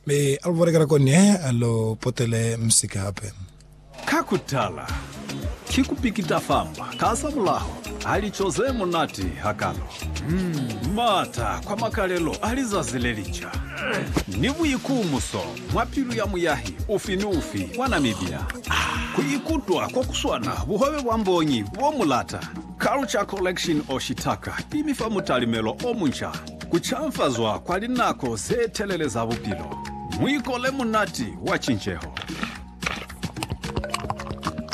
Mi alu balekela kone alu potele musika hape. Ka kutala, ki kupikita famba ka za mulaho ha lico ze munati hakalo, maata kwa makalelo a lizazi le linca, ni buikumuso mwa pilu ya muyahi ufi ni ufi wa Namibia ku ikutwa ko kuswana buhobe bwa mbongi bo mu lata. Culture Collection Oshitaka i mi fa mutalimelo o munca. Ku canfazwa kwa linako ze telele za bupilo, muiko le munati wa cinceho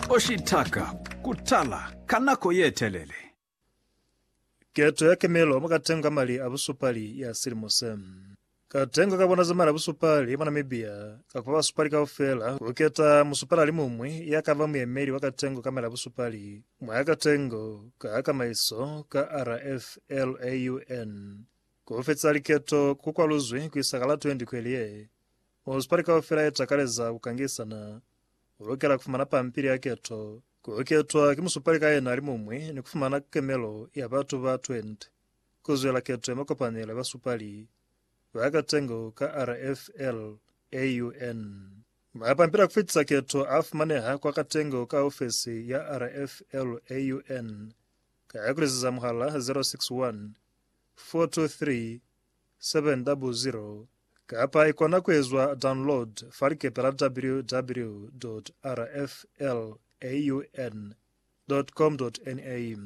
o shitaka ku tala ka nako ye telele. Keto ya kemelo mwa katenga mali a busupali ya silimo se. Katenga ka bona za mali a busupali mwa Namibia ka kupa basupali kaufela ku keta musupalalimuñwi ya ka ba muyemeli wa katengo ka mali a busupali. Mwa ka tengo, ka kamaiso ka RFLAUN, ku fetisa liketo ku kwaluzwi ku isa ka la 20 kweli ye. Musipali kaufela ye takaleza ku kangisana u lukela ku fumana pampili ya keto, ku ketwa ki musupali ka yena alimuñwi ni ku fumana kemelo ya batu ba 20 ku zwela keto ya makopanelo ya basupali ba ka tengo ka RFLAUN. Mapampila kufitisa keto afumaneha kwa Katengo ka ofesi ya RFLAUN ka ya kulezeza muhala 061 423 700 kapa ikona kuezwa download fa likepe la www.rflaun.com.na.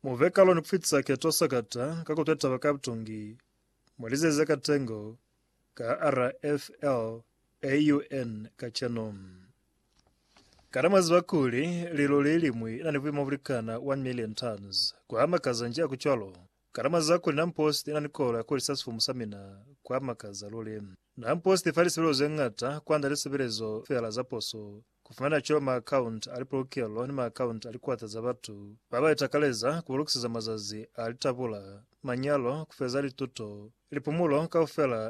Muve kaloni kufitisa keto sakata ka kutwa taba ka butungi, mulizeze Katengo Ka RFL AUN kacenu, kana mwa ziba kuli lilo le limwi na ni buimo bu likana 1 million tons? Kwa makaza nji a ku cwalo? Kana mwa ziba kuli Nampost ina ni kolo ya ku hulisa sifumu sa mina? Kwa makaza luli. Nampost ifa lisebelezo ze ñata kwand'a lisebelezo feela za poso, ku fumana cwalo maakhaunti a lipolokelo ni maakhaunti a likwata za batu ba ba itakaleza ku ba lukiseza mazazi a litabula, manyalo, ku feza lituto, lipumulo kaufela,